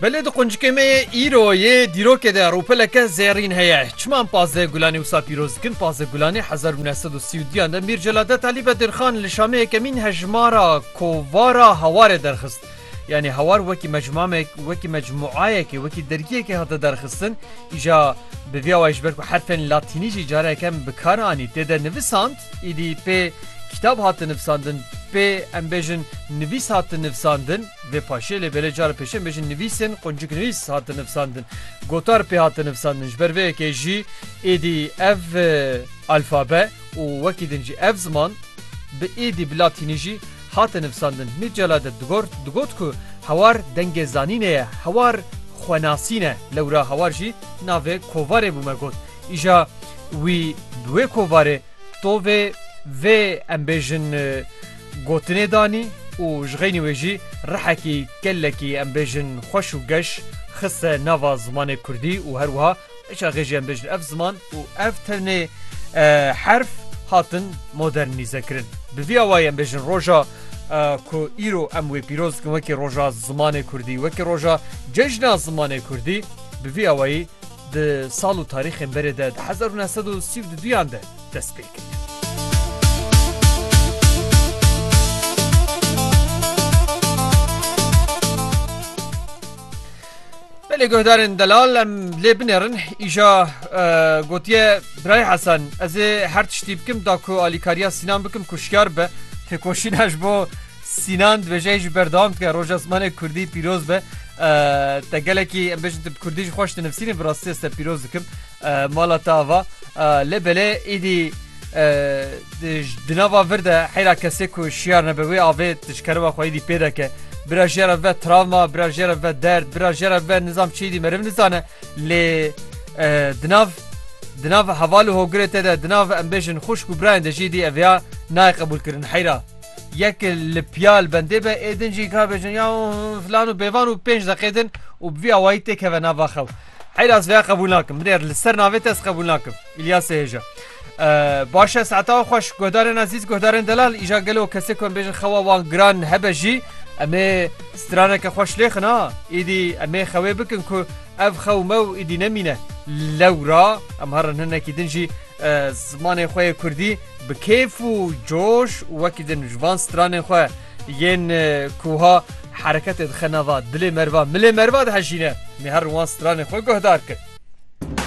Belê di quncikê me yê îro yê dîrokê de rûpeleke zêrîn heye. Çima em pazdeh gulanê wisa pîroz dikin? Pazdeh gulanê hezar û neh sed û sî û duyan de Mîr Celaddett Alî Bedirxan li Şamê yekemîn hejmara kovara Hewarê derxist. Yanî Hewar wekî mecmuamek wekî mecmuayekê wekî dergiyekê hate derxistin. Îja bi vî awayî ji ber ku herfên latînî jî careke kem bi kar anî tê de nivisand. Îdî pê kîtab hate nivsandin, pê em bêjin nivîs hate nivsandin, vê paşê lê belê cara pêşê em bêjin nivîsên qunciknivîs hate nivsandin. Gotar pê hate nivsandin, ji ber vê yekê jî êdî ev alfabe û wekî din jî ev ziman bi êdî bi latînî jî hate nivsandin. Mîr Celal de digor digot ku hawar dengê zanînê ye, hawar xwenasîn e, lewra hawar jî navê kovarê bû me got. Îja wî bi wê kovarê tovê vê em bêjin gotinê danî û ji xeynî wê jî rihekî kellekî em bêjin xweş û geş xiste nava zimanê kurdî û her wiha çaxê jî em bêjin ev ziman û ev tenê herf hatin modernîze kirin. Bi vî awayî em bêjin roja ku îro em wê pîroz dikin wekî roja zimanê kurdî, wekî roja cejna zimanê kurdî bi vî awayî, di sal û tarîxên berê de di hezar û neh sed û sî û du duyan de dest pê kir. Belê guhdarên delal em lê binêrin îja gotiye Birayê Hesen ez ê her tiştî bikim da ku alîkariya Sînan bikim ku şiyar be têkoşîna ji bo Sînan dibêje jî berdewam dike roja zimanê Kurdî pîroz be. Te gelekî em bêjin tu bi Kurdî jî xweş dinivîsînî bi rastî ez te pîroz dikim mala te ava. Lê belê îdî di nava vir de heyra kesê ku şiyar nebe wê avê di ji kerema xwe îdî pê deke. Bira jê re ve travma, bira jê re ve derd, bira jê re ve nizam çi îdî meriv nizane lê di nav di nav heval û hogirê te de di nav em bêjin xwişk û birayên de jî îdî ev ya nayê qebûlkirin heyra. Yek li piyal bendê be ê din jî ka bêjin ya filan û bêvan û pênc deqê din û bi vî awayî tê keve nava xew. Heyra ez vêya qebûl nakim. Min êr li ser navê te ez qebûl nakim. İlyasê hêja. Baş e saeta xweş guhdarên ezîz guhdarên delal îja gelo kesê ku em bêjin xewa wan giran hebe jî em ê straneke xweş lêxin ha îdî em ê xewê bikin ku ev xew mew îdî nemîne lewra em herin hinekî din jî Zimanê xwe yê Kurdî bi kêf û coş wekî din ji van stranên xwe yên kuha hereketê dixe nava dilê merva milê merva dihejîne. Mêher wan stranê xwe guhdar kir.